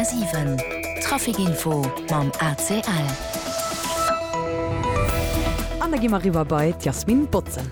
100,7 Traficinfo mam ACL. An da gi mer eriwwer bei d'Yasmine Botsen.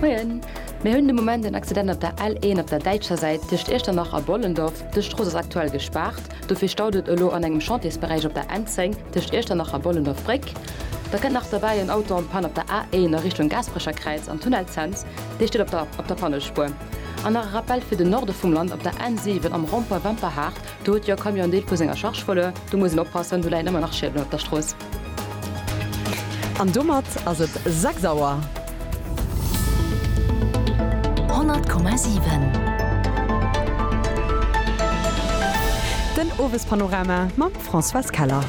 Moien. Mir hunn de Moment en Accident op der L1 op der däitscher Säit tëscht Iechternach a Bollendorf. Dës Strooss ass aktuell gespaart. Dofir staut et elo an engem Chantiersberäich op der N10 tëscht Iechternach a Bollendorf-Bréck. Da kënnt nach derbäi en Auto an d'Pann op der A1 a Richtung Gaasperecherkräiz am Tunnel Cents, dee steet op der Pannespuer. An nach e Rappell fir den Norde vum Land, Op der N7 am Rond-point Wemperhaart, do huet jo e Camion en Deel vu senger Charge verluer. Do muss een oppassen, do läien ëmmer nach Schiedelen op der Strooss. An domat ass et 6 Auer. Den Owespanorama mam Françoise Keller.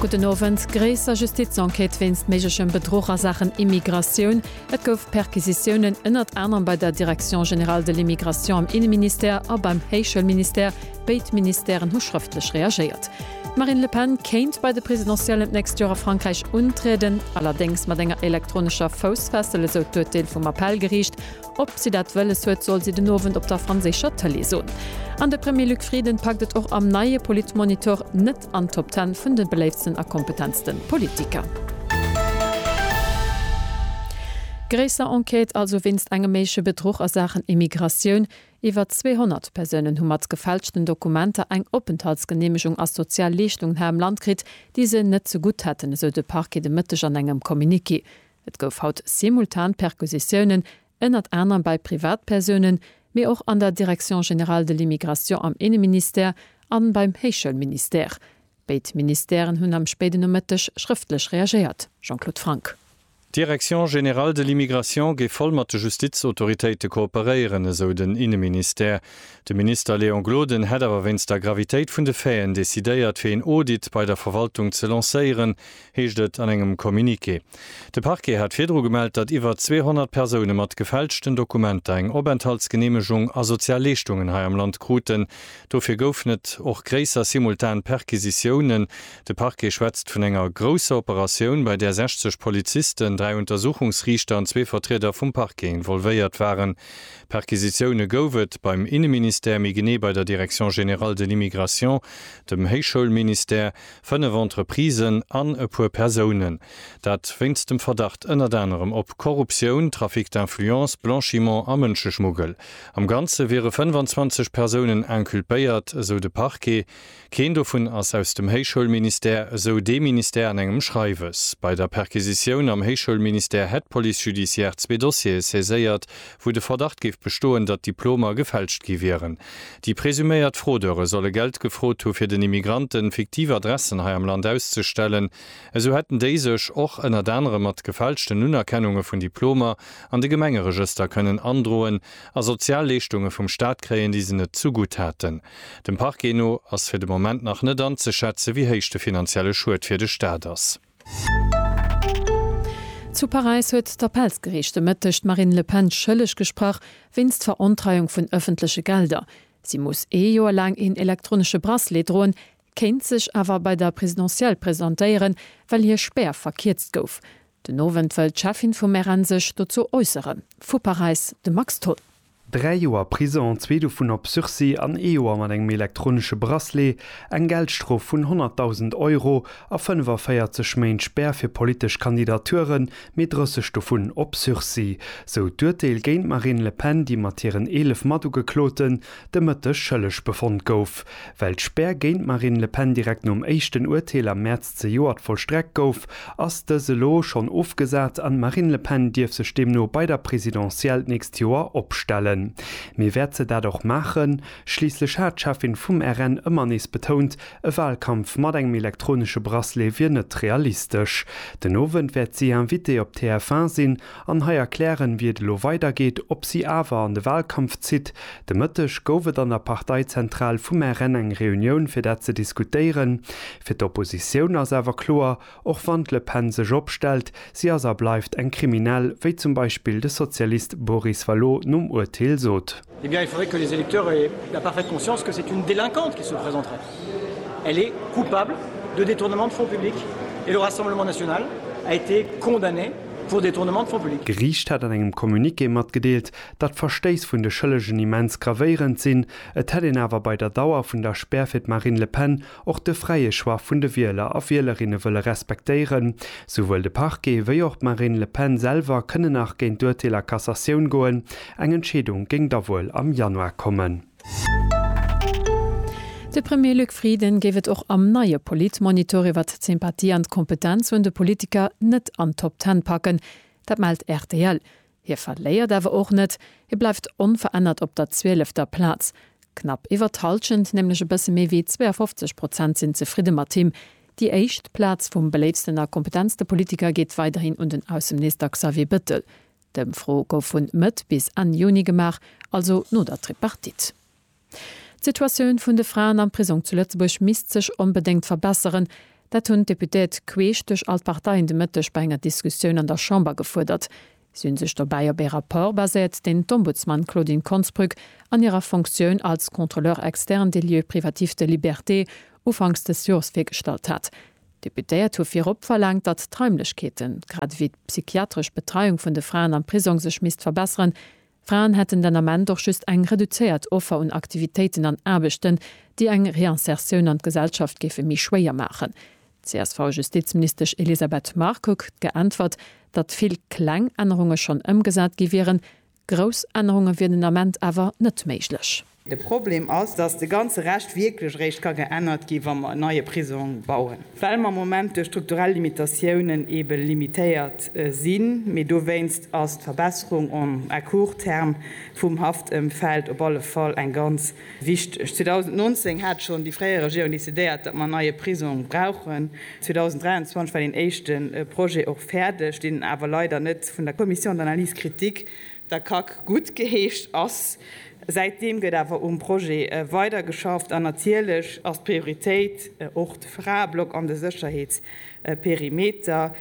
Gudden Owend. Gréisser Justizenquête wéinst méiglechem Bedruch a Saachen Immigratioun. Et gouf Perquisitiounen ënnert anerem bei der Direction générale de l'Immigration am Inneministère a beim Héichschoulministère. Béid Ministèren hu schrëftlech reagéiert. D'Marine Le Pen kéint bei de Presidentiellen d'nächst Joer a Frankräich untrieden, allerdéngs mat enger elektronescher Foussfessel, esou d'Urteel vum Appellgeriicht. Ob si dat wëlles huet, soll si den Owend op der franséischer Tëlee soen. An de Premier Luc Frieden packt et och am neie Politmonitor net an d'Top Ten vun de beléiftsten a kompetentste Politiker. Gréisser Enquête also wéinst engem méigleche Bedruch a Saachen Immigratioun. Iwwer 200 Persounen hu mat gefälschten Dokumenter eng Openthaltsgeneemegung a sozial Leeschtungen hei am Land kritt, déi se net ze gutt hätten, esou de Parquet de Mëtteg an engem Communiqué. Et gouf haut simultan Perquisitiounen, ënnert anerem bei Privatpersounen, mee och an der Direction générale de l'immigration am Inneministère a beim Héichschoulministère. Béid Ministèren hunn am spéiden Nomëtteg schrëftlech reagéiert. Jean-Claude Franck. D'Direction générale de l'immigration géif voll mat de Justizautoritéite kooperéieren, esou den Inneministère. De Minister Léon Gloden hätt awer wéinst der Gravitéit vun de Faiten decidéiert, fir een Audit bei der Verwaltung ze lancéieren, heescht et an engem Communiqué. De Parquet hat virdru gemellt, datt iwwer 200 Persoune mat gefälschten Dokumenter eng Openthaltsgeneemegung a sozial Leeschtungen hei am Land kruten. Dofir goufen et och gréisser simultan Perquisitiounen. De Parquet schwätzt vun enger grousser Operatioun, bei där 60 Polizisten, dräi Untersuchungsriichter an zwee Vertrieder vum Parquet involvéiert waren. Perquisitioune gouf et beim Inneministère, méi genee bei der Direction générale de l'immigration, dem Héichschoulministère, fënnef Entreprisen an e puer Persounen. Dat wéinst dem Verdacht ënnert anerem op Korruptioun, Trafic d'influence, Blanchiment a Mënscheschmuggel. Am Ganze wiere 25 Persounen inculpéiert, esou de Parquet. Keen dovun ass aus dem Héichschoulministère, esou dee Ministère an engem Schreiwes. Bei der Perquisitioun am Héichschoulministère hätt d'Police judiciaire zwee Dossiere saiséiert, wou de Verdacht géif bestoen, datt Diplomer gefälscht gi wieren. Déi presuméiert Fraudeure solle Geld gefrot hu fir den Immigranten fiktiv Adressen hei am Land auszestellen. Esou hätten déi sech och ënnert anerem mat gefälschten Unerkennunge vun Diplomer an de Gemengeregëster kënnen androen a sozial Leeschtunge vum Staat kréien, déi se net zu gutt haten. Dem Parquet no ass fir de Moment nach net anzeschätze wéi héich de finanzielle Schued fir de Staat ass. Zu Paräis huet d'Appellsgeriicht de Mëtteg d'Marine Le Pen schëlleg gesprach wéinst Verontreiung vun ëffentleche Gelder. Si muss ee Joer laang een elektronesche Bracelet droen, kéint sech awer bei der Presidentielle presentéieren, well hir Spär verkierzt gouf. Den Owend wëll d'Cheffin vum RN sech dozou äusseren. Vu Paräis de Max Tholl. Dräi Joer Prison, zwee dovun op Sursis an ee Joer mat engem elektronesche Bracelet, eng Geldstrof vun 100.000 Euro a 45 Méint Spär fir politesch Kandidaturen, mee 30 dovun op Sursis. Sou d'Urteel géint d'Marine Le Pen, déi mat hiren 11 Matugekloten, de Mëtteg schëlleg befonnt gouf. Well d'Spär géint d'Marine Le Pen direkt nom éischten Urteel am Mäerz zejoert vollstreckt gouf, ass dës elo schonn ofgesat an d'Marine Le Pen dierf sech deemno bei der Presidentielle d'nächst Joer opstellen. Mee wäert se dat och maachen? Schliisslech hat d'Cheffin vum RN ëmmer nees betount, e Walkampf mat engem elektronesche Bracelet wier net realistesch. Den Owend wäert si Invitée op TF1 sinn An hei erklären, wéi et elo weidergeet, ob si awer an de Wahlkampf zitt. De Mëtteg gouf et an der Parteizentral vum RN eng Reunioun, fir dat ze diskutéieren. Fir d'Oppositioun ass awer kloer, och wann d'Le Pen sech opstellt, si ass a bleift eng Kriminell, wéi zum Beispill de Sozialist Boris Vallaud nom Urteel sot. Eh bien, il faudrait que les électeurs aient la parfaite conscience que c'est une délinquante qui se présenterait. Elle est coupable de détournement de fonds publics et le Rassemblement national a été condamné pour détournement de fonds publics. D'Geriicht hätt an engem Communiqué matgedeelt, datt d'Verstéiss vun de Schëllegen immens gravéierend sinn. Et hätt een awer bei der Dauer vun der Spär fir d'Marine Le Pen och de fräie Choix vun de Wieler a Wielerinne wëlle respektéieren. Souwuel de Parquet wéi och d'Marine Le Pen selwer kënne nach géint d'Urteel a Cassatioun goen. Eng Entscheedung géing da wuel am Januar kommen. De Premier Luc Frieden géif et och am neie Politmonitor iwwer d'Sympathie an d'Kompetenz un de Politiker net an d'Top Ten packen. Dat mellt rtl. Hie verléiert awer och net, hie bleift onverännert op der zwielefter Plaz. Knapp iwwert d'Hallschent, nämlech e bësse méi wéi 52 Prozent sinn zefridde mat him. Déi éischt Plaz vum beléiftsten a kompetentste Politiker geet weiderhin un den Ausseminister Xavier Bettel. D'Ëmfro gouf vun Mëtt bis Enn Juni gemaach, also no der Tripartite. D'Situatioun vun de Fraen am Prisong zu Lëtzebuerg misst sech onbedéngt verbesseren. Dat hunn d'Deputéiert queesch duerch all d'Parteien de Mëtteg bei enger Diskussioun an der Chamber gefuerdert. Si hunn sech dobäi op ee Rapport baséiert, deen d'Ombudsman Claudine Konsbrück an hirer Funktioun als Contrôleur externe des lieux privatifs de liberté ufanks dës Jors virgestallt hat. D'Deputéiert hu virop verlaangt, datt d'Raimlechkeeten, grad ewéi d'psychiatresch Betreiung vun de Fraen am Prisong sech misst verbesseren, Fraen hätten den Ament och just eng reduzéiert Offer un Aktivitéiten an Aarbechten, déi eng Reinsertioun an d'Gesellschaft géife méi schwéier maachen. D'CSV-Justizministesch Elisabeth Marcoque huet geäntwert, datt vill kleng Ännerunge schonn ëmgesat gi wieren, grouss Ännerunge wieren den Ament awer net méiglech. De Problem ass, dass de ganze Rescht wierklech eréischt ka geännert gi wa mer en neie Prisong bauen, well mer am Moment duerch strukturell Limitatiounen eebe limitéiert sinn. Mee dowéinst ass d'Verbesserung en, à court terme vum Haftëmfeld op alle Fall eng ganz wichteg. 2019 hat schonn déi fréier Regierung decidéiert, datt mer en neie Prisong brauchen. 2023 war deen éischte Projet och fäerdeg, deen awer leider net vun der Commission d'analyse critique, Der Kack gutt geheescht ass. Säitdeem gëtt awer um Projet weider geschafft an natierlech ass d'Prioritéit och de Fraeblock an de Sécherheetsperimeter.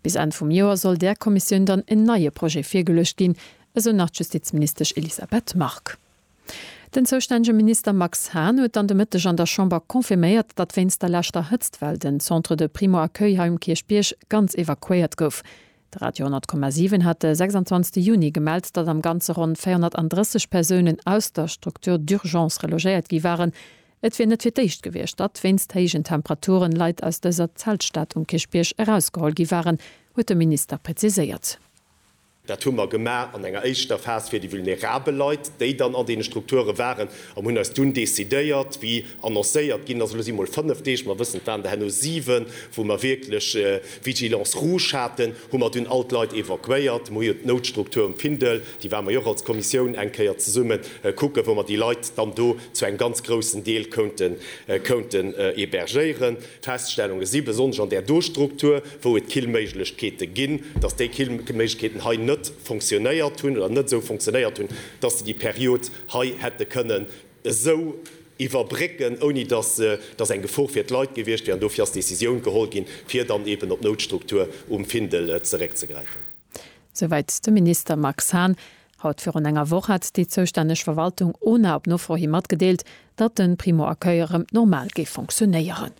Bis Enn vum Joer soll där Kommissioun dann en neie Projet virgeluecht ginn, esou nach d'Justizministesch Elisabeth Margue. Den zoustännege Minister Max Hahn huet dann de Mëtteg an der Chamber confirméiert, datt wéinst der leschter Hëtztwell den Centre de Primo-Accueil hei um Kierchbierg ganz evakuéiert gouf. De Radio 100,7 hat de 26 Juni gemellt, datt am Ganze ronn 430 Persounen aus der Structure d'urgence relogéiert gi waren. Et wier net fir d'éischt gewiescht, datt wéinst héijen Temperaturen Leit aus dëser Zeltstad um Kierchbierg erausgeholl gi waren, huet de Minister preziséiert. Dat hu mer gemaach an enger éischter Phas fir déi vulnerabel Leit, déi dann an deene Strukture waren, an hunn eis dunn decidéiert, wéi. annoncéiert ginn ass. Elo si mol fënnef Deeg, mer wëssen et waren der herno siwen, wou mer wierklech Vigilance rouge haten, hu mer dunn all d'Leit evakuéiert. Mer hu jo d'Noutstruktur um Findel, déi ware mer jo och als Kommissioun eng Kéier zesumme kucken, wou mer déi Leit dann do zu engem ganz groussen Deel kounten kounten hébergéieren. D'Feststellunge si, besonnesch an där do Struktur, wou et Killméiglechkeete ginn, datt déi Killméiglechkeeten hei net fonctionnéiert hunn oder net esou fonctionnéiert hunn, datt se déi Period hei hätte kënnen, esou iwwerbrécken, ouni datt datt eng Gefor fir d'Leit gewiescht wier. An dofir ass d'Decisioun geholl ginn, fir dann eben op d'Noutstruktur um Findel zeréckzegräifen. Souwäit de Minister Max Hahn. Haut virun enger Woch hat déi zoustänneg Verwaltung Ona op Nofro hi matgedeelt, datt de Primo Accueil erëm normal géif fonctionéieren.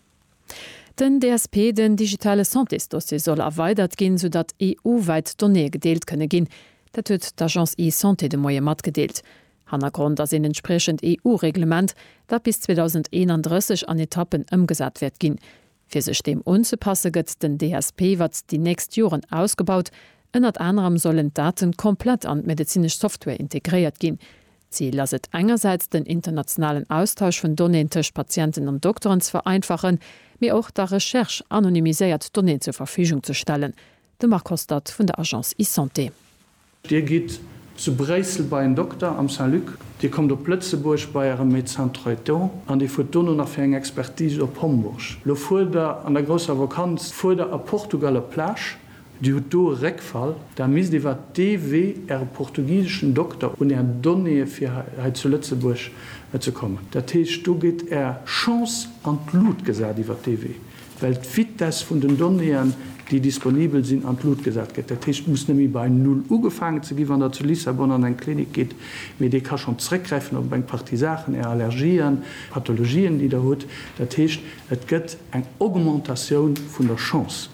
Den DSP, den digitale Santésdossier, soll erweidert ginn, sou datt EU-wäit Donnéeë gedeelt kënne ginn. Dat huet d'Agence eSanté de Moie matgedeelt. Hannergrond ass een entspriechend EU-Reglement, dat bis 2031 an Etappen ëmgesat wäert ginn. Fir sech deem unzepasse gëtt den DSP iwwert déi nächst Joren ausgebaut. Ënnert anerem sollen d'Daten komplett an d'medezinesch Software integréiert ginn. D'Zil ass et engersäits den internationalen Austausch vun Donnéeën tëscht Patienten an Dokteren ze vereinfachen, mee och der Recherche anonymiséiert Donnéeën zur Verfügung ze stellen. De Marc Hostert vun der Agence eSanté. Dir gitt zu Bréissel bei en Dokter am Saint-Luc, Dir kommt op Lëtzebuerg bei Äre Médecin Traitant an Dir fuert dono nach fir eng Expertise op Homburg. Lo fuert Der an der grousser Vakanz, fuert Der a Portugal op d'Plage, Dir hutt do e Réckfall, da misst iwwer dee Wee Äre portugiseschen Dokter un Är Donnéeë fir hei zu Lëtzebuerg ze kommen. Dat heescht, do gétt Är Chance an d'Lut gesat iwwer dee Wee. well d'Vitesse vun den Donnéeën, déi disponibel sinn, an d'Lut gesat gëtt. Dat heescht, et muss net méi bei Null ugefaangen ze ginn, wann Der zu Lissabon an eng Klinik gitt, mee dee ka schonn zréckgräifen op eng Partie Saachen, Är Allergien, Pathologien, déi Der hutt. Dat heescht, et gëtt eng Augmentatioun vun der Chance.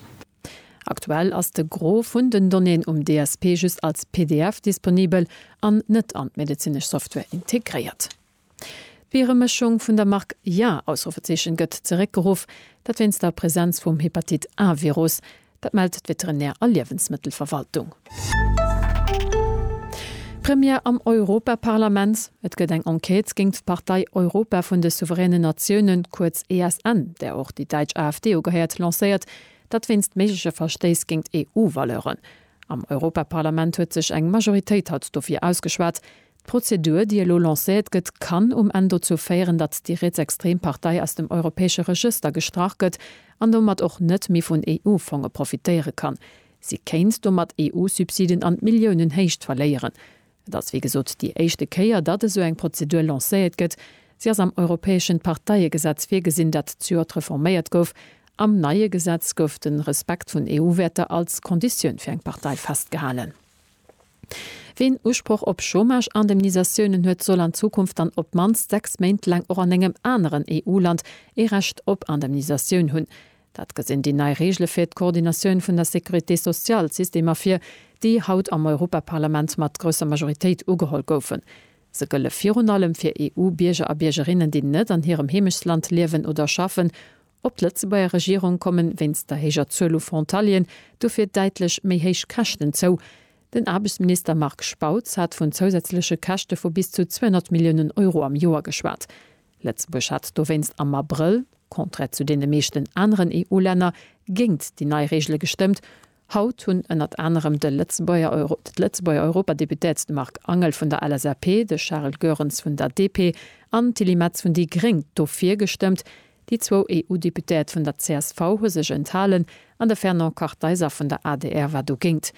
Aktuell ass de Gros vun den Donnéeën um DSP just als pdf disponibel an net an d'medezinesch Software integréiert. D'Bieremëschung vun der Mark Ja! gëtt zeréckgeruff, dat wéinst der Presenz vum Hepatit A-Virus. Dat mellt d'Veterinär a Liewensmëttelverwaltung. Première am Europaparlament, Et gëtt eng Enquête géingt d'Partei Europa vun de souveränen Natiounen, kuerz ESN, där och déi däitsch AfD ugehéiert, lancéiert. Dat wéinst méigleche Verstéiss géingt EU-Valeuren. Am Europaparlament huet sech eng Majoritéit haut dofir ausgeschwat, D'Prozedur, déi elo lancéiert gëtt, kann um Enn dozou féieren, datt déi rietsextrem Partei aus dem europäesche Regëster gestrach gëtt an domat och net méi vun EU-Fonge profitéiere kann. Si kéint domat EU-Subsiden an Milliounenhéicht verléieren. Et ass wéi gesot déi éischte Kéier, datt esou eng Prozedur lancéiert gëtt. Si ass am europäeschen Parteiegesetz virgesinn, dat zejoert reforméiert gouf. Am neie Gesetz gouf de Respekt vun EU-Wäerter als Konditioun fir eng Partei festgehalen. Ween Usproch op Chômage-Indemnisatiounen huet, soll an Zukunft dann op d'mannst sechs Méint laang och an engem aneren EU-Land ee Recht op Indemnisatioun hunn. Dat gesinn déi nei Reegele fir d'Coordinatioun vun der Sécurité sociale Systemer vir, déi haut am Europaparlament mat grousser Majoritéit ugeholl goufen. Se gëlle virun allem fir EU-Bierger a Biergerinnen, déi net an hirem Heemechtsland liewen oder schaffen Op d'Lëtzebuerger Regierung komme wéinst der héijer Zuel u Frontalieren dofir däitlech méi héich Käschten zou. Den Aarbechtsminister Marc Spautz hat vun zousätzleche Käschte vu bis zu 200 Milliounen Euro am Joer geschwat. Lëtzebuerg hat dowéinst am Abrëll, contraire zu deene meeschten aneren EU-Länner, géingt déi nei Reegele gestëmmt, Haut hunn ënnert anerem de Lëtzebuerger Europadeputéert de Marc Angel vun der LSAP, de Charles Goerens vun der DP an d'Tilly Metz vun déi gréng dofir gestëmmt. Déi zwou EU-Deputéiert vun der csv hu sech enthalen an de Fernand Kartheiser vun der adr war dogéint.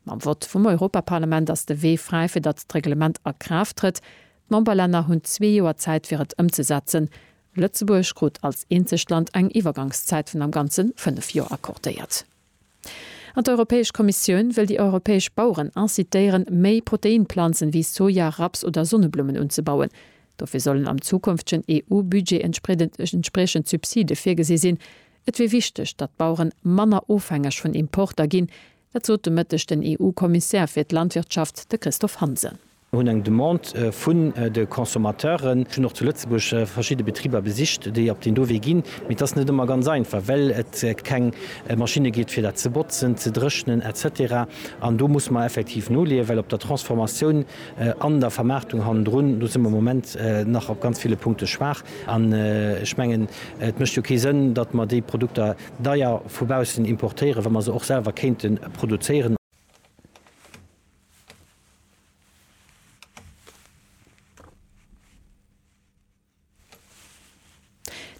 Mam Vott vum Europaparlament ass de Wee fräi, fir datt d'Reglement a Kraaft trëtt. D'Memberlänner hunn zwee Joer Zäit, fir et ëmzesetzen. Lëtzebuerg krut als eenzegt Land eng Iwwergangszäit vun am Ganze fënnef Joer accordéiert. An d'Europäesch Kommissioun wëll déi europäesch Baueren incitéieren, méi Proteinplanzen wéi Soja, Raps oder Sonneblummen unzebauen. Dofir sollen am zukünftegen EU-Budget entspriechend Subside virgesi sinn. Et wier wichteg, datt d'Baueren manner ofhängeg vun Importer ginn. Dat sot de Mëtteg den EU-Kommissär fir d'Landwirtschaft, de Christophe Hansen. Mir hunn eng Demande vun de Consommateuren. Ech hunn och zu Lëtzebuerg verschidde Betriber besicht, déi op deen do Wee ginn. Mee et ass net ëmmer ganz einfach, well et keng Maschinne gétt, fir dat ze botzen, ze dréchnen, etc. An do muss mer effektiv noleeën, well op der Transformatioun an der Vermaartung hannendrun, do si mer am Moment nach op ganz ville Punkte schwaach. An ech mengen, et mécht jo kee Sënn, datt mer déi Produkter deier vu baussen importéieren, wa mer se och selwer kéinte produzéieren.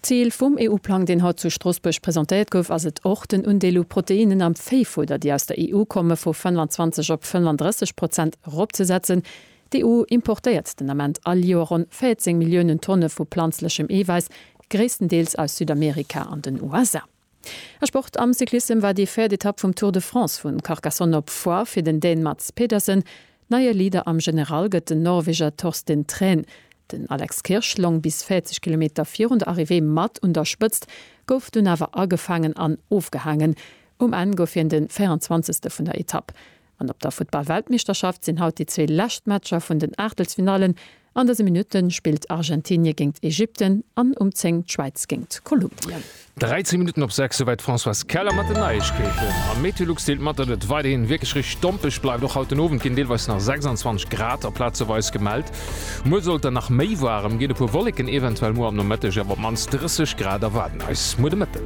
Zil vum EU-Plang, deen haut zu Stroossbuerg presentéiert gouf, ass et och, den Undeel u Proteinnen am Véifudder, déi aus der EU komme, vu 25 op 35 Prozent eropzesetzen. D'EU importéiert den Ament all Joer ronn 14 Milliounen Tonne vu planzlechem Eewäiss, gréisstendeels aus Südamerika an den USA. A Sport, Am Cyclissem war déi véiert Etapp vum Tour de France vu Carcassonne op Foix fir den Dän Mads Pedersen. Neie Leader am General gëtt den Norweger Torsten Thrän. Den Alex Kirsch long bis 40 Kilometer virun der Arrivée mat un der Spëtzt, gouf dunn awer agefaangen an ofgehaangen. Um Enn gouf hien de 24. vun der Etapp. An op der Futtball-Weltmeeschterschaft sinn haut déi zwee lescht Matcher vun den Aachtelsfinallen. An dëse Minutte spillt Argentinie géingt Ägypten an um 10 d'Schwäiz géingt Kolumbien. 13 Minutten op 6, souwäit d'Françoise Keller mat den Neiegkeeten. A Meteolux deelt mat, datt et weiderhi wierklech rich stompeg bleift. Och haut den Owend ginn deelweis nach 26 Grad a plazeweis gemellt. Muer sollt dann nach méi waarem ginn, e puer Wolleken eventuell muer am Nomëtteg, awer op d'mannst 30 Grad erwaarden eis muer de Mëtten.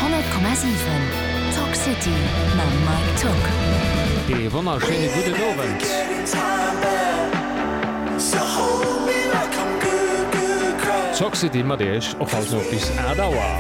100,7 Talk City mam Mike Tück. Ee wonnerschéine gudden Owend. Talk City mat iech och haut no bis 8 Auer.